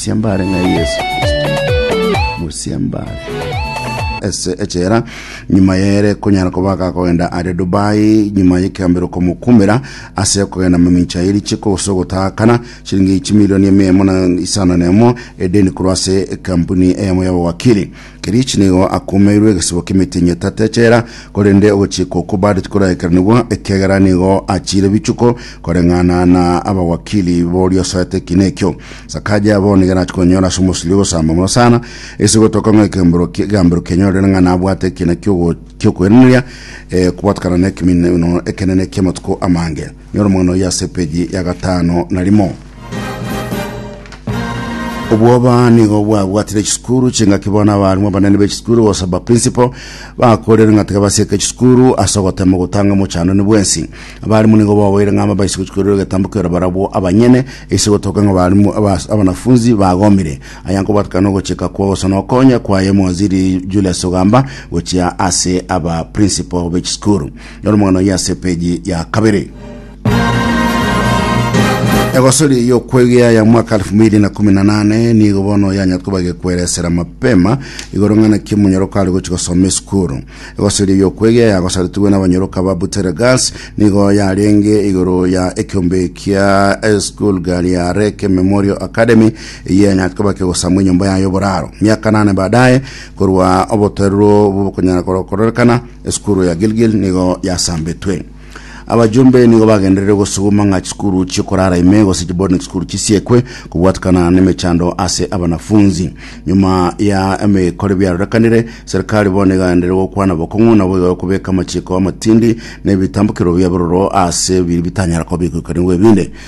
Mosiambare ng'a Yesu Kristo. Mosiambare. ase echera nyuma yere konyara koba agakogenda aria dubai nyuma yekegambero komokumera ase okogenda mamincha eri chiko gose ogotakana chiringi chimilioni eme emo na isano na emo edeni korwa ase ekampuni eyemo yabawakiri Kerichi nigo akumeirwe egesebo k'emetienyi etato echela, korende ogochiika okwo bado tikoraekeranigwa, ekiagera nigo achiire bichuko koreng'ana na abawakili boria osoete ekiina ekio. Sakaja bono nigo arache konyora ase omosirio ogosamba mono sana, ase gotoka ng'a ekembero ki- egambero kianyorire ng'a nabwate ekiina kiogo- kiokoiraneria, eh, kobwatakana nekemineno ekenene ki'amatuko amange. Nyora omogano oyio ase epeji ya gatano na rimo. Obwoba nigo bwabwatire chisukuru chingaki bono abarimu abanene b'echisukuru gose abaprinsipal bakorire ng'a tiga basieke chisukuru ase ogotema gotanga omochandani bwensi. Abarimu nigo boboire ng'a amabaisa gochikorera egetambo kero barabwo abanyene ase gotoka ng'a abarimu abas- abanafunzi bagomire. Aya nkobwatekana nogochika kwa gose nokonya kwaye omowaziri Julius Ogamba gochia ase abaprinsipal b'echisukuru. Noro mang'ana oyio ase epeji ya kabere. Egosori y'okwegea ya mwaka 2018 nigo bono yanyatkoba gekweresera mapema igoro ng'ana ki omonyoroko are gochi gosoma esukuru. Egosori y'okwegea yagosaretigwe n'abanyoroka ba Buteregas nigo yarenge igoro ya ekiombe kia esukuru gari ya Reke Memorial Academy eye yanyatkoba kegosamwa enyomba yayo boraro. Miaka nane baadaye korwa obotoerero bw'okonyara kororekana Esukuru ya Gilgil nigo yasambetwe. Abajumbe nigo bagenderere gosuguma ng'a chisukuru chiokorara ime gose chiboarding school chisiekwe kobwatekana nemechando ase abanafunzi. Nyuma ya emekore biarorekanire, serikali bono igaenderere gokwana bokong'u nabo iga kobeka amachiko amatindi na ebitambukero bia bororo ase biri bitanyara koba egoikanigwa ebinde.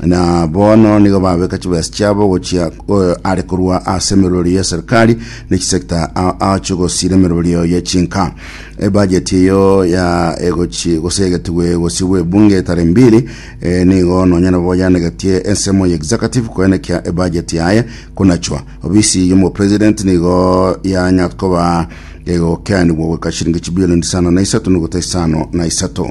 na bono nigo babeka chibesa chiabo gochia eh, are korwa ase emerorio ya serikali ne chisekta a- acho gosira emerorio ya chinka ebajeti eyo ya egochi gosegetigwe gosibwa ebunge tare mbiri eh, nigo nonya nabo yanegetie ensemo ya executive koenekia ebajeti yaye konachwa obisi yomo president nigo yanya koba egokeanigwa goika shilingi chibilioni isano na isato nogota isano na isato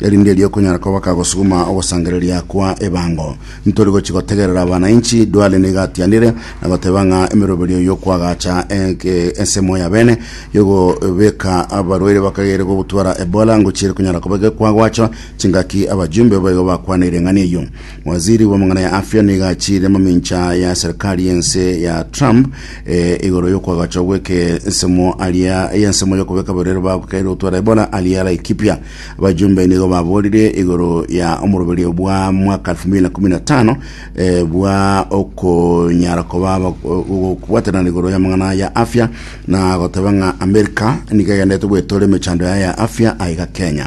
Erinde erio okonyara koba kagosuguma ogosangereria kwa ebango. Ntori gochi gotegerera abanainchi, Duale nigo atianire na goteba ng'a emeroberio yokwagacha enke ensemo ya bene yogobeka abarwaire bakagere gobutwara Ebola ngochi ere konyara koba gekwa gwacho chingaki abajumbe baigo bakwaneire eng'ani eyio. Waziri bw'amang'ana ya afya nigo achiire mamincha ya serikali y'ense ya Trump eh, igoro yokwagachwa gweke ensemo aria y'ensemo yokobeka abarwaire bagokeire gotwara Ebola aria Laikipia. Abajumbe nigo baborire igoro ya omoroberio bwa mwaka 2015 eh, bwa okonyara koba aba- o- o- okobwatanana igoro y'amang'ana ya afya na goteba ng'a Amerika nigo egenderete gwetora emechando yaye ya afya aiga Kenya.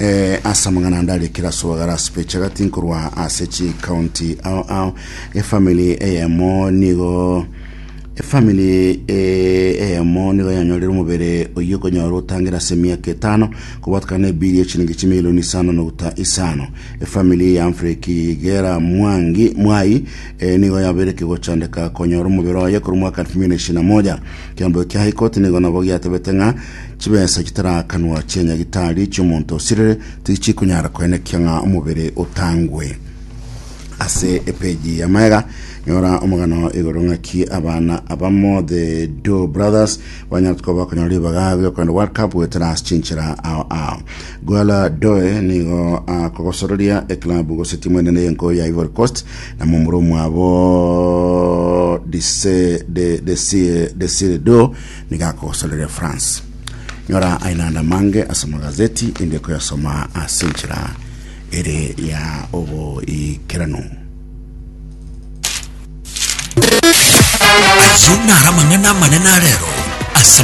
Eh, ase amang'ana ande aria kera soa gara ase peche gati nkorwa ase chikaunti ao ao efamili eyemo nigo efamili eh, eyemo nigo yanyorire omobere oyio okonyora otangere ase emiaka etano kobwatikana na ebiri echiringi chimilioni isano noguta isano efamili ya Humphrey Kigera Mwangi Mwai eh, nigo yabere kegochandeka konyora omobere oye korwa mwaka 2021 kiambo kia High Court nigo nabo giatebete ng'a Chibesa chitarakanwa chia nyagitari chi'omonto osirire tichikonyara koenekia ng'a omobere otangwe. Ase epeji ya maega nyora omogano igoro ng'aki abana abamo the do brothers banyara tuko bakonyora ribaga riokogenda world cup goetera ase chinchera ao ao gwala doe nigo akogosororia eklabu gose timu enene y'enko ya ivory coast na momura omwabo dise de desire desire do Nigo akogosorere France. Nyora ainanda mange ase amagazeti inde koyasoma ase enchera ere ya oboikeranu. Ayio naro amang'ana amanene arero ase